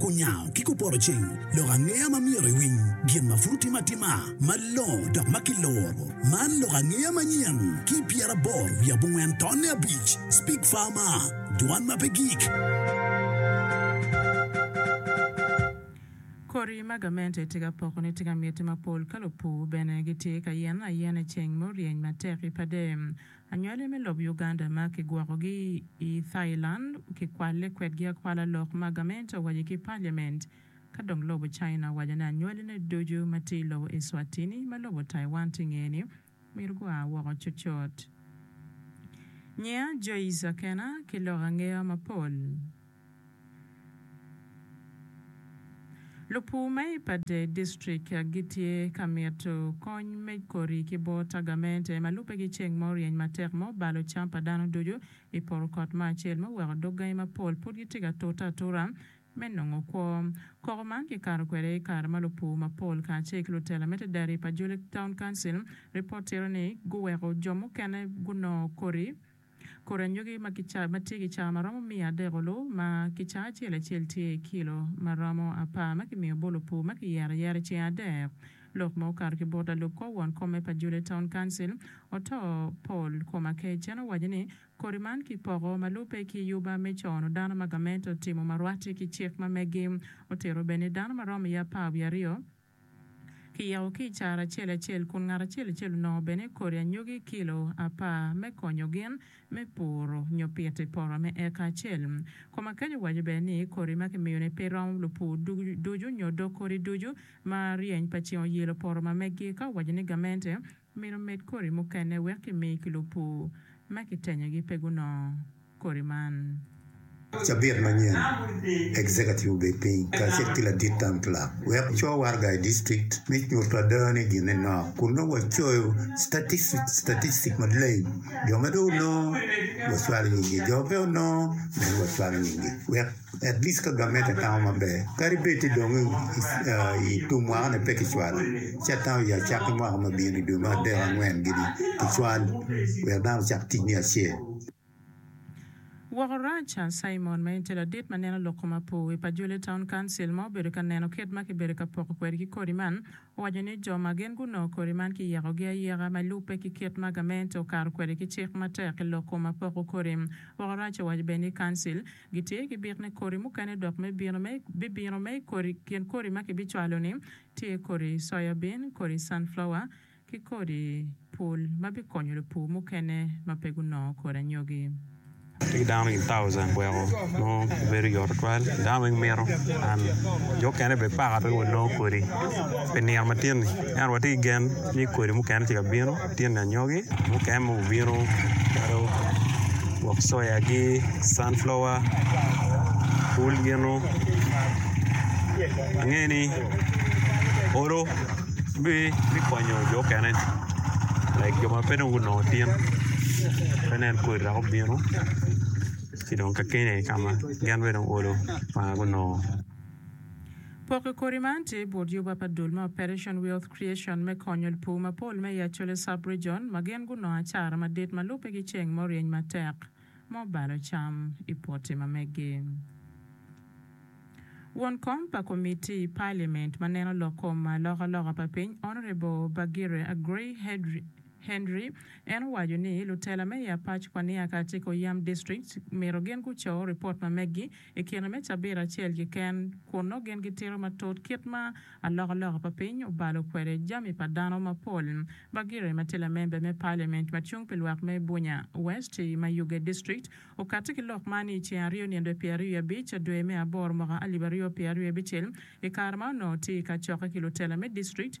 Kunyango ki kuporoceng lok angeya ma myero iwiny gin ma pud otime atima malongo dok ma kiluro. Man lok angeya manyen ki pyeraboro wiye abongwen tonne abic, Speak Farmer, Dwan ma pe gik. Kodi ma gamente tye ka poko ni tye ka miti mapol ka lupur bene gitye ka yene ayena i ceng muryeny matek i pade. Anywali me lobo Uganda ma kigwokogi i Thailand kikwalle kwedgi akwala lok ma gamente owaco ki Parliament. Ka dong lobo China owaco ni anywalline ducu ma tye i lobo Eswatini ma lobo Taiwan tye i ngeye-ni myero gua woko cutcut. Nyiya Joyce Akena ki lok angeya mapol. Lupur me Ipadde District gitye ka mito kony me kodi ki bot tagamente ma lubegi ceng ma oryeny matek ma obalo cam pa dano ducu i poto kot ma acel ma oweko dog gangi mapol pud gitye ka tute atura me nongo kwo. Koko man kikato kwede i kare ma lupur mapol kacel ki lutela me Tedari pa Juliet Town Council ripot tito ni guweko jo mukene gunongo kodi Kodi anyogi ma tye ki cawa ma romo miya adek olu ma ki cawa acel acel tye i kilo ma romo apar ma kimiyo bolo pur ma kiyero ayera i ceng adek. Lok ma okato ki bot lalub kor won kom me pa Juliet Town Council, Oto Paul Komakech en owaco ni kodi man kipoko ma lubbe ki yuba me cono dano ma gamente otimo ma rwate ki cik ma megi otito bene dano ma romo iye apar wiye aryo kiyeko ki i caro acel acel kun ngat acel acel onongo bene kodi anyogi kilo apar me konyo gin me puro nyo pito i poto me eka acel. Kom akeco waco bene ni kodi ma kimiyo ni pe romo lupur ducu nyo dog kodi ducu ma ryeny pa ceng oyelo poto ma meggi ka owaco ni gamente Myero omed kodi mukene wek kimi ki lupur ma kitenyogi pe gunongo kodi man. Cabit manyen, Executive obed piny kacel ki ladit tam club wek co waraga i district me nyuto ada ni gine nok kun nongo wacoyo statistics maleng. Jo ma dong onongo, wacwalo nyinggi, jo ma pe onongo, meno wacwalo nyinggi wek. Woko rac, Simon, ma en tye ladit ma neno lok kom apo wi pa Julie Town Council ma obedo ka neno kit ma kibedo ka poko kwede ki kodi man, owaco ni jo ma gin gunongo kodi man kiyekogi ayeka ma lubbe ki kit ma gamente okato kwede ki cik matek i lok kom ma poko kodi. Woko rac owaco bene ni Council. Gitye ki bit me kodi mukene dok me bino me bibino me kodi kin kodi ma kibicwalo ni tye kodi soya bin, kodi sunflower, ki kodi pul ma bikonyo lupur mukene ma pe gunongo kodi anyogi. Atye ki dano i thousand weko nongo bedo yot tutwal dano weng mito and jo mukene bene paka pe wek wanongo kodi pi nino matin-ni ento watye ki gen ni kodi mukene tye ka bino. Latin anyogi mukene mogo obino calo gwok soyagi, sunflower, pul ginu ange ni olo bikonyo jo mukene like jo ma pe dong gunongo tin pe nen kodi dok obino ci dong kakene ka ma gin bene dong olo ma gunongo. Poko kodi man tye bot yoba pa dul me Operation Wealth Creation me konyo lpur mapol me i Acholi Sub-Region ma gin gunongo acara madit ma lubbe ki ceng mo ryeny matek ma obalo cam i poti ma meggi. Won kom pa komitti i Parliament ma neno lok kom ma alokaloka pa piny Honourable Bagire Aggrey Hedri, Henry. En owaco ni lutela me i apac pa Nia kacel ki oyam district myero gin guco ripot ma meggi i kine me cabit acel keken kun nongo gin gitito matut kit ma alokaloka pa piny obalo kwede jami pa dano mapol. Bagire ma tye lamember me Parliament ma cung pi lwak me Bunya West i Mayuge District okati ki lok man i ceng aryo nyen dwe pyeraryo i abic dwe me aboro mwaka alip aryo pyeraryo abicel i kare ma onongo tye i kacokke ki lutela me district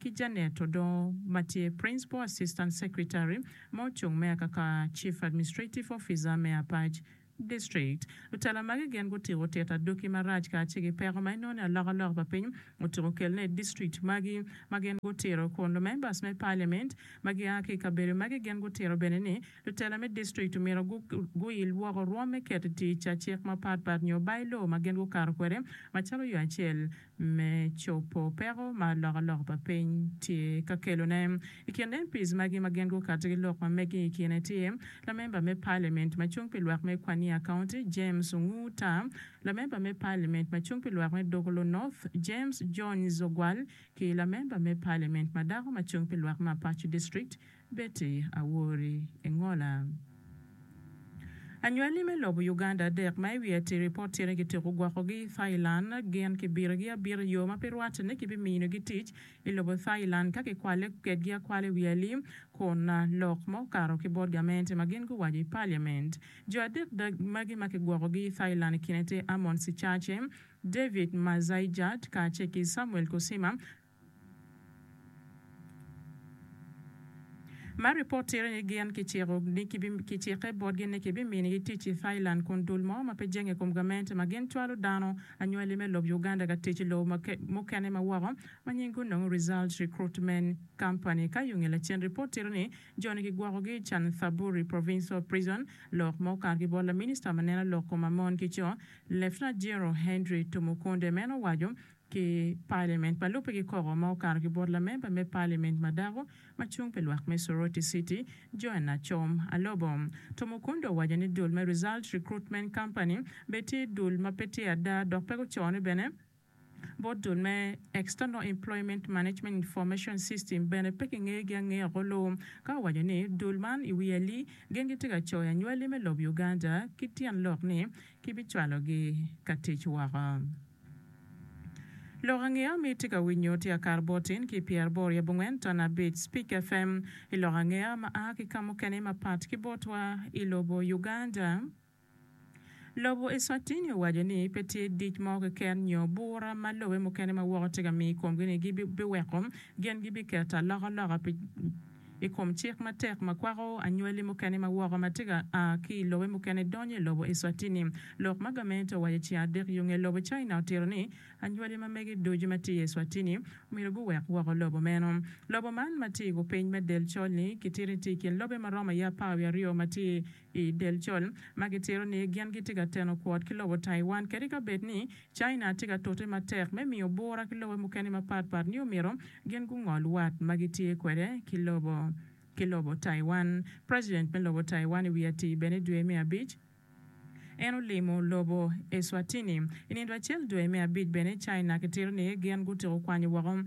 ki Janet Odongo ma tye Principal Assistant Secretary ma ocung me akaka Chief Administrative Officer me Apac District. Lutela magi gin gutiko tit adoki marac kacel ki peko ma inongo ni alokaloka pa piny otuko kelone i district magi ma gin gutito kun lumembers me Parliament ma gia ki i kabedo magi gin gutito bene ni lutela me district omyero guil woko rwom me keto i tic cik mapatpat nyo By-law ma gin gukato kwede macalo yo acel me cobo peko ma alokaloka pa piny tye ka kelone. I kin MPs magi ma gin gukato ki lok ma mege i kine tye, lamemba me Paliament ma cung pi lwak me Kwania County, James Onguu Tam, lamemba me Paliament ma cung pi lwak me Dogoloo North, James Jones Ogwal, ki lamemba me Paliament ma dako ma cung pi lwak me Apac District, Betty Awori Engola, anywali me lobo Uganda adek ma i wi atiri pot tyene gitiko gwokogi i Thailand gin kibirigi abira iyo ma pe rwatte ni kibiminogi tic i lobo Thailand ka kikwalle kedgi akwala i wi alim kun lok ma okato ki bot gamente ma gin guwaco i Parliament. Jo adek magi ma kigwokogi i Thailand i kine tye Amon Sichache, David Mazaijat kacel ki Samuel Kusima Ma ripot tito ni gin kiciko ni kicikke botgi ni kibiminigi tic i Thailand kun dul mo ma pe jenge i kom gamente ma gin cwalo dano anywali me lob Uganda ka tic i lobo mukene ma woko ma nying gunongo Results Recruitment Company, Kayunge lacen ripot tito ni joni kigwokogi i Chanthaburi Provincial Prison lok ma okato ki bot laminista ma neno lok kom ma mon ki co Lieutenant General Henry Tumukunde meno owaco ki Paliament pa Lubbe kikoko ma okato ki bot lamemba me Paliament ma dako ma cung pi lwak me Soroti City, Joan Acom Alobo. Tumukunde owaco ni dul me Result Recruitment Company bene tye dul ma pe tye ada dok pe gucone bene bot dul me External Employment Management Information System bene pe kingegi angeya oko luu ka owaco ni dul man i wi ali gin gitye ka coyo anywali me lob Uganda ki tyen lok ni kibicwalogi ka tic woko. Lok ange ami itye ka winyo tye akar bot in ki pyer aboro yab ongwen ton abic Speak FM i lok ange ma a ki kamukene ma pat ki botwa i lobo Uganda. Lobo Eswatini owaco ni pe tye dic mo keken nyo bura ma lobe mukene ma woko tye ka mi ikomgi ni gi biweko gin gi biketo aloka loka pi i kom cik matek ma kwako anywali mukene ma woko ma tye ka a ki i lobe mukene donyo i lobo Eswatini. Lok ma gamente owaco ceng adek yo nge lobo China otito ni anywali ma mege ducu ma tye i Eswatini omyero guwek woko lobo meno. Lobo man ma tye i gu piny me del col-ni kitito ni tye i kin lobe ma romo aye apar wiye aryo ma tye I del col ma gitito ni gin gitye ka teno kwot ki lobo Taiwan kadi ka bed ni China tye ka tute matek me miyo bura ki lobe mukene mapat pat ni omyero gin gungol wat ma gitye kwede ki lobo ki lobo Taiwan. President me lobo Taiwan i wi atii bene i dwe me abic en olimo lobo Eswatini. I nindo acel dwe me abic bene China kitito ni gin gutyeko kwanyo woko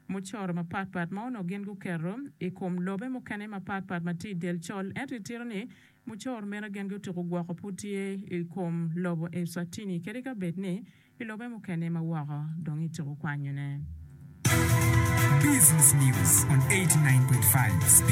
mucoro mapat pat ma onongo gin guketo i kom lobe mukene mapat pat ma tye i Del Col, ento itito ni mucoro meno gen gutuko gwoko pud tye i kom lobo Eswatini kadi ka bed ni i lobe mukene ma woko dong ituko kwanyone. Business News on eighty nine point five.